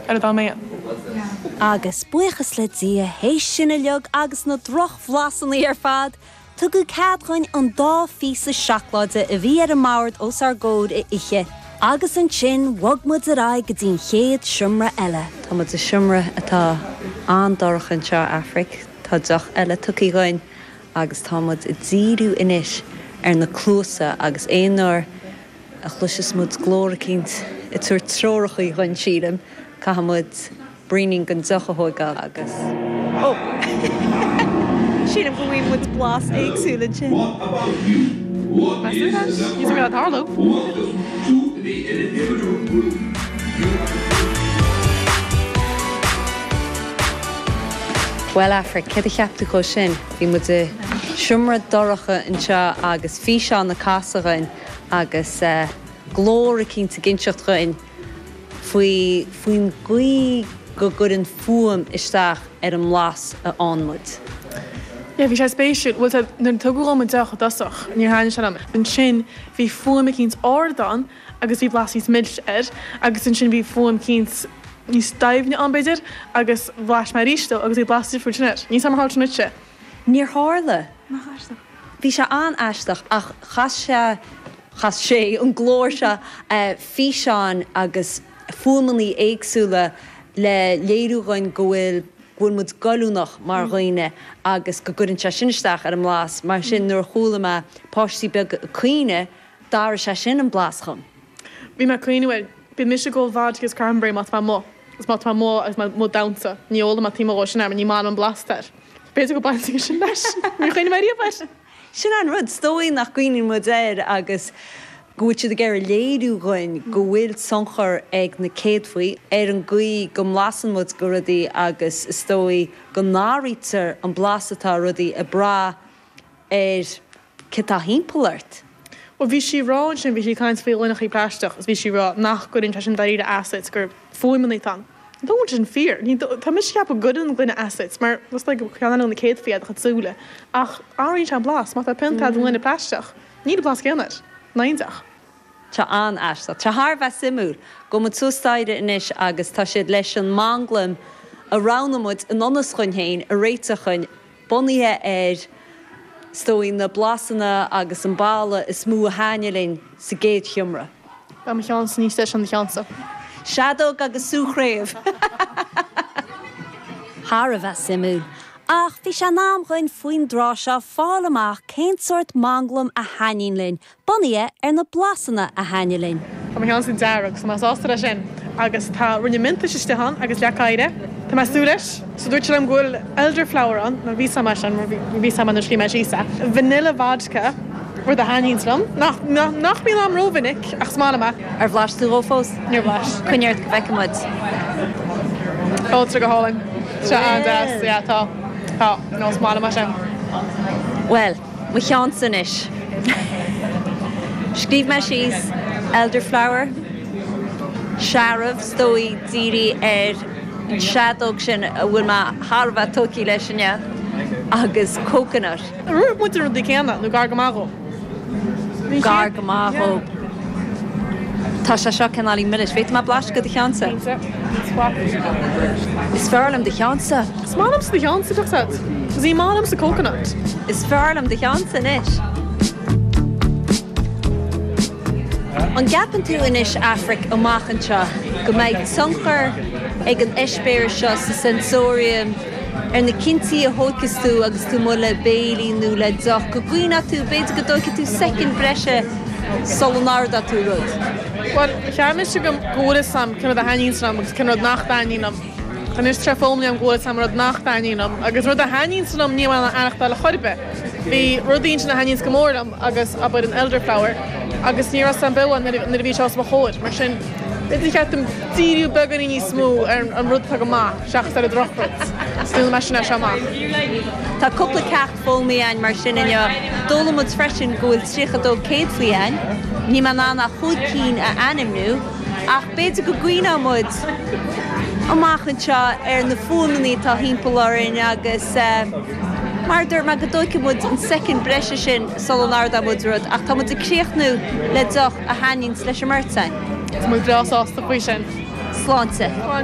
ar a dá mbeann. Agus buíochas le Dia, théis sin uileag agus na drochbhlasanna ar fad, tugadh cead dhuinn an dá phíosa seacláide a bhí ar an mbord os ár gcomhair a ithe, agus ansin bhog muid ar aghaidh go dtí an chéad seomra eile. Tá muid i seomra atá an-dorcha anseo, a Aifric, tá deoch eile tugtha dhuinn agus tá muid ag díriú anois ar na cluasa agus aon uair, a chloiseas muid glór eicínt ag tabhairt treorachaí dhuinn sílim, caithfidh muid braoinín den deoch a thóigeáil agus ó! sílim go bhfuighidh muid blas éagsúil ansin. Bhuel, Aifric, céard a cheap tú dhó sin? Bhí muid i seomra dorcha anseo agus físeán a casadh dhuinn. agus glór eicínt ag inseacht dhuinn faoi, faoin gcaoi go gcuireann fuaim isteach ar an mblas a fhaigheann muid. Yeah, bhí sé spéisiúil. Bhuel, tá, nuair a tugadh dhom an deoch i dtosach, níor thaitnigh sé liom. Ansin, bhí fuaim eicínt ard ann agus bhí blas níos milse air, agus ansin bhí fuaim eicínt níos doimhne ann, b'fhéidir, agus bhlais mé arís dó agus bhí blas difriúil ansin air. Níor tharla sé sin duitse! Níor tharla. Nach aisteach. Bhí sé an-aisteach ach chas sé, chas sé, an glór seo físeáin agus fuaimeanna éagsúla le léiriú dhuinn go bhfuil, go bhfuil muid goilliúnach mar dhaoine agus go gcuireann sé sin isteach ar an mblas. Mar sin nuair a chuala mé páistí beaga ag caoineadh, d'athraigh sé sin an blas dhom. Bhí mé ag caoineadh air. Bíonn mise ag ól vodka agus cranberry má tá mé amuigh, agus má tá mé amuigh agus mé amuigh ag damhsa, ní ólaim an méid céanna dhó sin air, mar ní airím an blas air. B'fhéidir go mbaineann sin leis. Níor chuimhnigh mé riamh air. Sin an rud, is dóigh nach gcuimhníonn muid air agus go bhfuil siad ag iarraidh léiriú dhuinn go bhfuil tionchar ag na céadfaí ar an gcaoi go mblasann muid de rudaí agus is dóigh go n-athraítear an blas atá ar rudaí ag brath ar Céard atá thimpeall ort? Bhuel, bhí sí a rá ansin, bhí sí ag caint faoi ghloineachaí plaisteach agus bhí sí a rá nach gcuireann sé sin dáiríre as duit, gur fuaimeanna atá ann. N'fheadar an bhfuil sin fíor. Ní, tá mise a cheapadh go gcuireann an gloine as duit mar it's like a ceann eile de na céadfaí é do chuid súile ach athraíonn sé an blas má tá pionta a'd i ngloine plaisteach, níl an blas céanna air. Nach aisteach. Tá an-aisteach. Tá thar a bheith suimiúil. Gabhfaidh muid suas staighre anois agus tá siad leis an manglaim a roghnaigh muid i ngan fhios dhuinn féin a réiteach dhuinn. bunaithe ar, is dóigh, na blasanna agus an baladh is mó a thaitnigh linn sa gcéad sheomra. Tá mo cheannsa níos deise ná do cheannsa. Seadóg agus sú chraobh. Thar a bheith suimiúil. Ach bhí sé in am dhuinn faoin tráth seo fáil amach cén sórt manglaim a thaitníonn linn, Bunaithe ar na blasanna a thaitníonns linn. Tá mo cheannsa dearg agus tá mé sásta leis sin agus tá roinnt miontais istigh ann agus leac oighre. Tá mé ag súil leis. So dúirt sé liom go bhfuil elderflower ann, nó bhí fhios a'm é sin, mar bhí fhios a'm é nuair a scríobh mé síos é. Vanilla vodka, rud a thaitníonns liom. Nach, nach mbíonn a'm rómhinic ach is maith liom é. Ar bhlais tú dhó fós? Níor bhlais. Coinnigh ort go bhfeicfidh muid. Sláinte. Go hálainn. Tá sé an-deas. Yeah, tá. Tá. No, is maith liom é sin. Bhuel. Mo cheannsa anois. Scríobh mé síos elderflower, searbh, is dóigh dírithe ar an seadóg sin a bhfuil mé thar a bheith tógtha leis inniu, agus coconut. Scríobh muid na rudaí céanna, nó gar go maith dhó. Bhí sé. Gar go maith dhó. Yeah. Tá sé seo cineáilín milis. Bhféadfaidh mé blaiseadh de do cheannsa? Bhí sé. Is fearr liom do cheannsa. Is maith liomsa do cheann sa chocktail. Ní maith liomsa coconut. Is fearr liom do cheannsa anois. An gceapann tú anois, Aifric, amach anseo, go mbeidh tionchar ag an eispéireas seo sa sensorium ar na cinntí a thóigfeas tú agus tú amuigh le béile nó le deoch, go gcuimhneoidh tú, b'fhéidir, go dtóigfidh tú soicind breise sula n-ordóidh tú rud? Bhuel, cheap mise go bhfuil fhios a'm cén rud a thaitníonns liom agus cén rud nach dtaitníonn liom. Anois tá sé foghlamtha a'm go bhfuil fhios a'm an rud nach dtaitníonn liom agus an rud a thaitníonns liom níl mé in ann é a aithneachtáil ar chor ar bith. Bhí rudaí ansin a thaitníonns go mór liom agus abair an elderflower agus ní raibh fhios a'm beo é nuair a bhí sé os mo chomhair. Mar sin b'fhéidir gur cheart dom díriú beagáinín níos mó ar an rud atá go maith seachas ar an drochrud. Sin é mo mhisean as seo amach. Tá cúpla ceacht foghlamtha againn mar sin inniu. D'fhoghlaim muid freisin go bhfuil tríocha dó céadfaí againn, níl mé in ann ach chúig cinn a ainmniú, ach b'fhéidir go gcuimhneoidh muid amach anseo ar na fuaimeanna atá thimpeall orainn agus mar a dúirt mé, go dtóigfaidh muid an soicind breise sin sula n-ordóidh muid rud, ach tá muid ag críochnú le deoch a thaitníonns leis an mbeirt againn. Is muid breá sásta faoi sin. Sláinte.